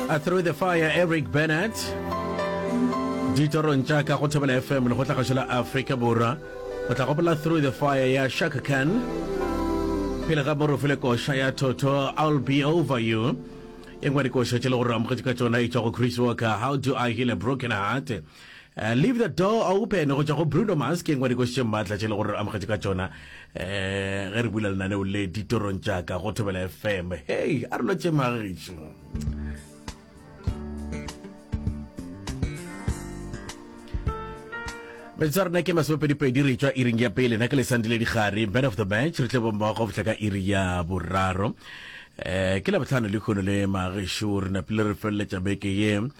A Through the Fire, Eric Bennett. Ditorong tša ka go Thobela FM le go tla gašo la Afrika Borwa. O tla gopola Through the Fire ya Shaka Khan. Pele ga moro fele koša ya Toto, I'll Be Over You. E ngwe dikoša tše le gore amogetse ka tšona e tšwa go Chris Walker, How Do I Heal a Broken Heart? Leave the door open go tšwa go Bruno Mars ke engwe dikošitše mmatla tše le gore re amogetše ka tšona um ge re bula lenaneo le ditorong tšaka go thobela fm hei a re lo tše magišo metsotsa rena ke masomepedipedi re tswa iring ya pele na ke lesandile digare man of the match re tle bommogo go fitlha ka iri ya boraro um ke labotlhano le kgono le magešu re napile re feleletša beke ye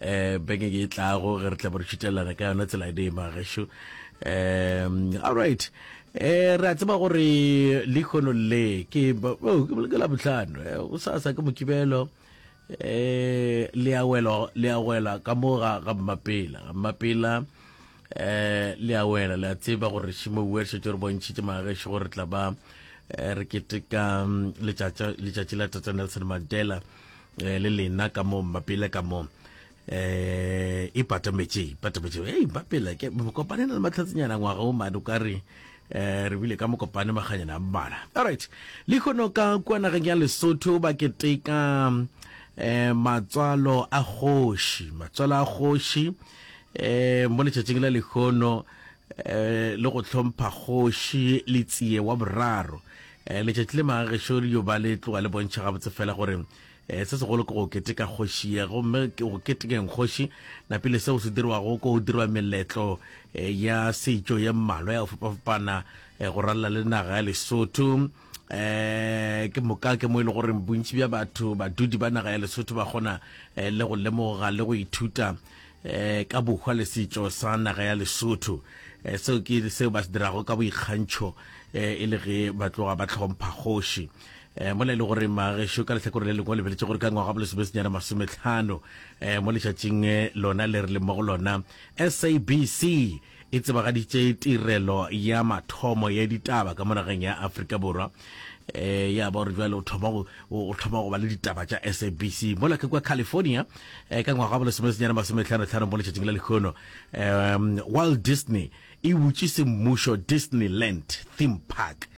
eh beke ke tlago ge re tla bo re šitelelana ka yona tsela ede magesho um all right eh re a tseba gore lekgono le ke oh, ke la botlhano eh, o sa sa ke mokibelo eh le a wela le a wela ka mo ga ga mmapela ga mmapela eh le a wela le a tseba gore shimo o se tšore bontšhitse magesho gore tla ba eh, re keteka mm, letšatši la tata nelson mandela eh, le lena ka mo mapele ka mo eh e patametše patametše hey mapele ke kopane na le matlhatsinyana ngwaga o mane o ka re eh re bile ka mokopane maganyana a mmala alright le kgono ka kwa nageng ya lesotho ba keteka eh matswalo a kgoši matswalo a kgoši eh mo letšatšing la lekgono eh le go tlhompha kgoši le tsie wa boraro E, letšatši le maga gešo le yo ba le tloga le bontšha gabotse fela gore e, se segolo ke go keteka kgoši ye gomme ke go ketekeng kgoši na pele seo se dirwago ko go dirwa meletlo e, ya setšo ye mmalwa ya go fapafapana e, go ralla le naga ya lesotho eh ke moka ke mo e le gore bontši bja batho badudi ba naga ya lesotho ba kgona eh, le go lemoga le go ithuta eh, ka bohwa le setšo sa naga ya lesotho eh, seo ke seo ba se dirago ka boikgantšho eh, e le ge ba tloga ba tlhompha kgoši eh, mola e le gore magešo ka letlhakore le lengwe lebeletse gore ka ngwaga bo lesomesenyana masometlhano eh, mo letšatšing eh, lona le re le mo go lona sabc e tsebagaditše tirelo ya mathomo ya ditaba ka mo nageng ya Afrika Borwa. E, ya ba gore jwale o thoma go o thoma go ba le ditaba tša SABC mola ke kwa California e, ka ngwaga wa bolesomesenyane masometlhano-tlhano mo letšatšing la lekgono um Walt Disney e butše semmušo Disneyland theme park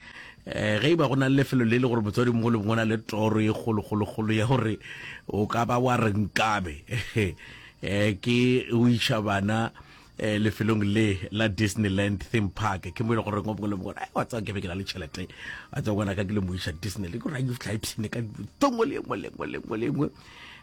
um ge e ba go na le lefelo le le gore motswadi mongwe le mongwe na le toro e kgolokgolokgolo ya gore o ka ba wa re nkabe um ke o iša bana eh, lefelong le la disneyland theme park ke mo e le gore ngwe le mongwe a wa tsaya kebe ke na le tšhelete a tsaya ngwana ka ke le mo isa disneyland ke gore a fitlha e thine ka tongo le engwe lengwe lengwe lengwe um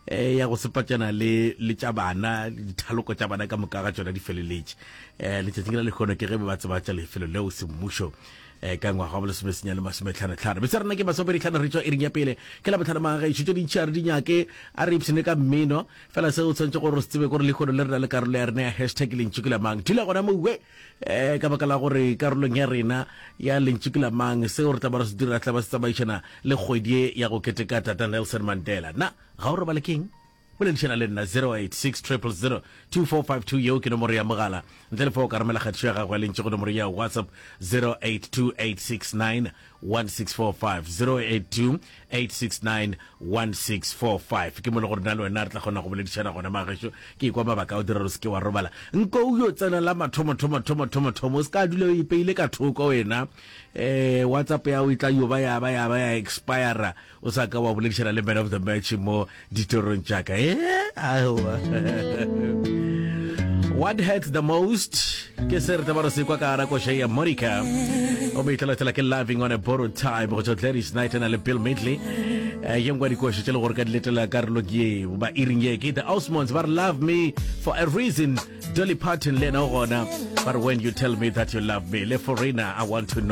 eh, ya go sepatšana le le tša bana dithaloko tša bana ka moka ga tsona di feleletše um eh, letšatšing la lekgono ke ge be ba tseba tša lefelo leo semmušo um ka ngwaga wa bolesome senya le masometlhanotlhano bese rena ke masomeditlhano re tswa e ring ya pele ke la botlhano maga gaešo tse dintšhi a re dinyake a re ipshene ka mmeno fela se o tshwanetse gore o se tsebe gore lekgono le rena le karolo ya rena ya hashtag lentšu ke lamang dula gona mowe um eh, ka baka la gore karolong ya rena ya lentšu ke lamang seo re tla ba re se dira tla ba se tsamaišana le kgwedi e ya go keteka tata nelson mandela na ga o robale keng boledišana le nna 086 2452 yeo ke nomoro ya mogala ntle le fa o ka romela kgatišo ya gago ya lentše go nomoro ya whatsapp 082869 08645 ke mo le gore na le wena re tla kgona go boledišana gona magešo ke ikwa mabaka o dira o seke wa robala nko o yo tsena la mathomothomothomothomothomo o se ka dula o ipeile ka thoko wena um whatsapp ya o e tla yoba yaba yaba ya expira O sa ka wa boledišana le man of the match mo ditorong tša ka. Eh, aowa. What hurts the most? Ke se re tabaro se kwa ka ara koše ya Monica. O mo itlalatela ke loving on a borrowed time go tšwa Gladys Knight na le Bill Midley. Eh, ye ngwa dikoše tše le gore ka diletela karolo ke ye ba iring ye ke the Osmonds ba re love me for a reason Dolly Parton le ena o gona ba re when you tell me that you love me le Forena I want to know